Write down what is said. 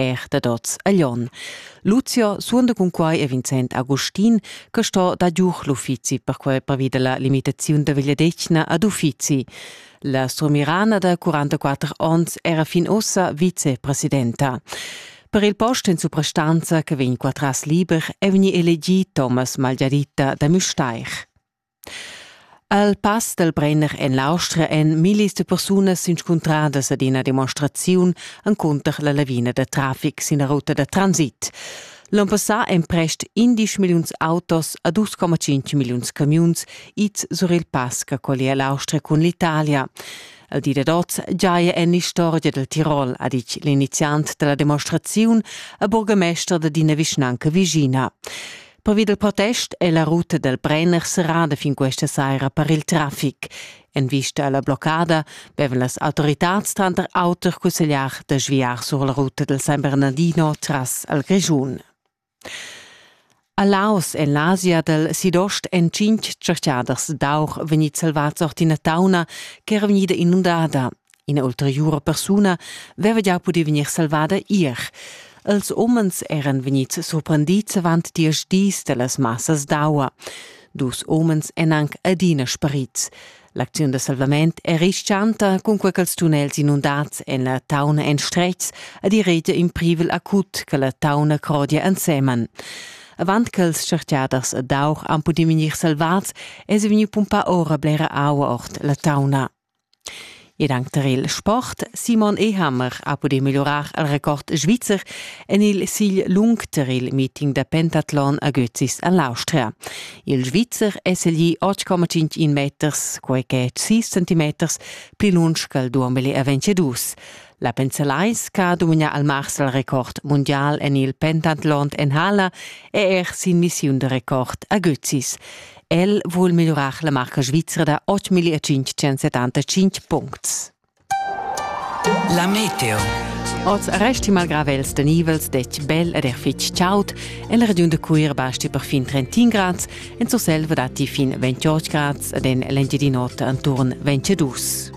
er dad oz a Lyon. Lucio suonda cun quai e Vincent Agustin che sto da giuch l'uffizi per quai pervi della limitaziun da vegliadetgna ad uffizi. La strumirana da 44 onns era fin ossa vicepresidenta. Per il post in suprastanza che vegn qua tras liber è vegni elegì Thomas Malgiaditta da Müstair. Al pass dal Brenner en l'Austria èn millis da persunas s'inscuntradas ad ina demonstraziun encunter la lavina da traffic sin la ruta da transit. L'onn passà èn prest 11 milliuns autos a 2,5 milliuns camiuns ids sur il pass che collia l'Austria cun l'Italia. Al di dad oz giaja en l'istorgia dal Tirol, ha ditg l'iniziant da la demonstraziun, a burgamester d'ina vischnanca vischina. Pervi dal protest è la ruta dal Brenner serrada fin questa saira per il traffic. En vista alla bloccada vevan las autoritats tranter auter cussegliar da sviar sur la ruta del San Bernardino tras al Grischun. A Laos en l'Asia del Sidost en cinc tscherchaders d'aur vegni salvads ord ina tauna che era vegnida inundada. Ina ulteriura persuna veva gia pudì vegnir salvada ier. Els umens eran vegnids surprendids avant diesch dis da las massas d'aua. Dus umens èn anc adina sparids. L'acziun da salvament è rischanta, cunquai ch'els tunnels inundads en la tauna en stretgs ed i regia in privel acut che la tauna crodia ensemen. Avant ch'els tschertgaders ed aur han pudì vegnir salvads, èsi vegni pumpà ora blera aua ord la tauna. Ed anc tar il sport. Simon Ehammer ha pudì migliurar il record svizzer en il sigl lung tar il meeting da pentatlon a Götzis en l'Austria. Il Svizzer è seglì 8,5 meters, quai che è 6 centimeters pli lunsch ch'al duambel a 22. La Penzelais, che ha dominà al mars il record mundial en il pentatlon en hala, è er sin missiun da record a Götzis. El vul migliurar la marca svizra da 8.575 puncts. La meteo. Oz resti malgravels da nivels dec bel ed er fitg chaud. En la regiun da Cuir basti perfin 31 grads, en Surselva datti fin 28 grads ed en l'Engiadin'Ota enturn 22.